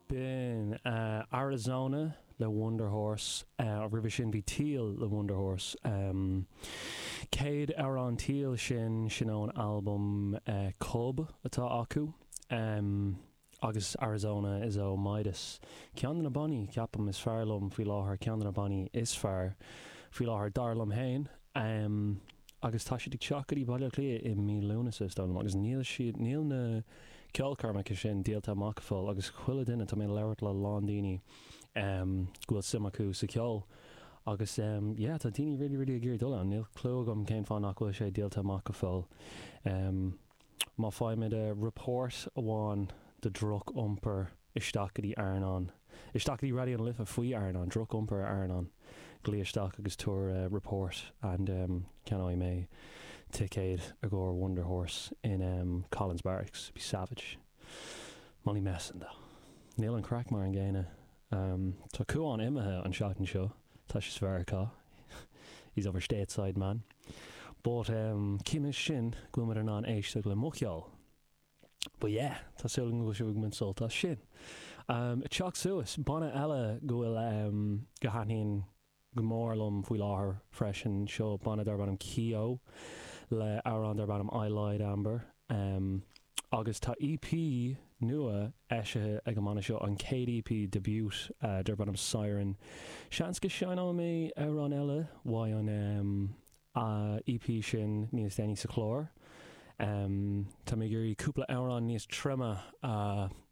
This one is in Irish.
B'in Arizona le Wunderhorse. Roimhe sin bhí Teal le Wunderhorse. Céad amhrán Teal sin, sin ón albam Cub atá acu. Agus Arizona is ó Midas. Ceann de na bannaí, ceapaim, is fearr liom faoi láthair, ceann de na bannaí is fearr faoi láthair, dar liom fhéin. Am, agus tá siad ag teacht go dtí Baile Átha Cliath i mí Lúnasa, is dóigh liom, agus níl siad, níl na ceolchoirmeacha sin díolta amach go fóill agus chuile dhuine, tá mé ag labhairt le a lán daoine ehm go bhfuil suim acu sa cheol agus ehm yeah tá daoine really really ag iarraidh dul ann, níl clue agam cén fáth nach bhfuil sé díolta amach go fóill ehm. Má faighimid report amháin de dhroch-iompar isteach go dtí Airneán, isteach go dtí Raidió na Life faoi Airneán, droch-iompar ar Airneán, glaoigh isteach agus tabhair report and ceannóidh mé ticéad i gcomhair Wunderhorse in Collins Barracks. Be savage. Molly Messendagh. Níl an craic mar an gcéanna Am, Tá Cuán imithe an tseachtain seo. Tá sé sa Mheiriceá. He's over stateside, man. But, em, ciallaíonn sin go bhfuil muid in ann éisteacht le mo cheol. But yeah, tá súil agam go bhfuil sibh ag baint sult as sin. Am, Teacht suas, banna eile go bhfuil, em, go thaitníonn go mór liom faoi láthair freisin. Seo banna darb ainm Keo le amhrán darb ainm I Lied Amber agus tá EP nua eisithe ag an mbanna seo, an céad EP debut darb ainm Siren. Seans go seinnfidh mé amhrán eile uaidh an EP sin níos déanaí sa chlár. Tá mé ag iarraidh cúpla amhrán níos troime a